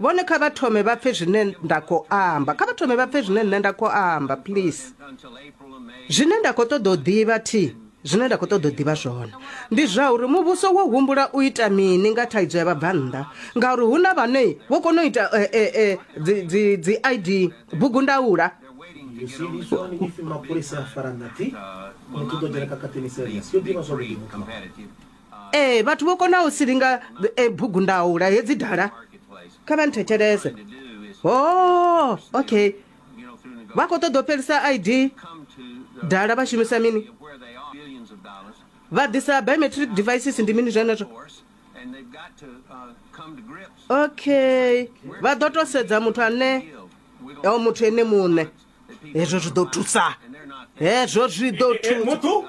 vhone kha vha thome vha pfe zwine nda khou amba kha vha thome vha pfe zwine nṋe nda khou amba please zwine nda khou ṱoḓa u ḓivha thi zwine nda khou ṱoḓa u ḓivha zwone ndi zwa uri muvhuso wo humbula u ita mini nga thaidzo ya vhabvannḓa ngauri hu na vhane vho kona u ita eh, eh, eh, dzi id bugu ndaula mapholisa a fara nati muthu ḓo dzhena kakatini serious yo ḓivha zwa vhulimi ee vhathu vho konaho u silinga e bugundaula hedzi dala kha vha nthetshelese o oh, okay vha khou ṱoḓa u fhelisa id dala vha shumisa mini vha ḓisa biometric devices ndi mini zwenezwo okay vha ḓo to sedza muthu ane o muthu ene muṋe hezwo zwi ḓo thusa hezwo zwi ḓo thusa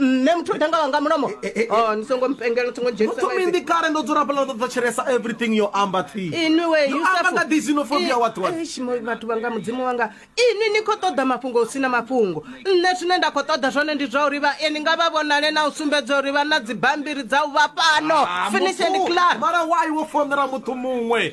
nṋe muthu ita nga wanga mulomo Eh, eh, eh. Oh, ni songo mpengela thongo dzhenisa muthu maipfi. minḓi kale ndo dzula fhala ndo thetshelesa everything yo amba thi inwi we Yo Yusufu. amba nga ḓi xenophobia I- what what Eish, mo- vhathu vhanga mudzimu wanga inwi ni khou ṱoḓa mafhungo hu sina mafhungo nṋe zwine nda khou ṱoḓa zwone ndi zwa uri vha e ni nga vha vhonale na u sumbedza uri vha na dzibambiri dza u vha fhano Ah, finish and muthu, clar mara why wo fonela muthu muṅwe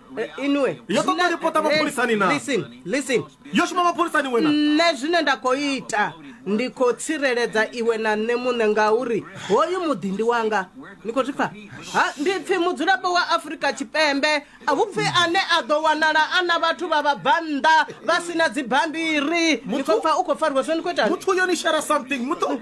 Eh, inwe Yo ṱoḓa zwine- ripota mapholisani na? Listen, listen. yo shuma mapholisani wena nṋe zwine nda khou ita ndi khou tsireledza iwe na nṋe muṋe ngauri hoyu muḓi ndi wanga ni khou zwi pfa ha ndi pfi mudzulapo wa afurika tshipembe a hu pfi ane a ḓo wanala a na vhathu vha vhabvannḓa vha si na dzibammbiri ni khou pfa u khou fariwa so ni khou ita muthu yo ni share something muthu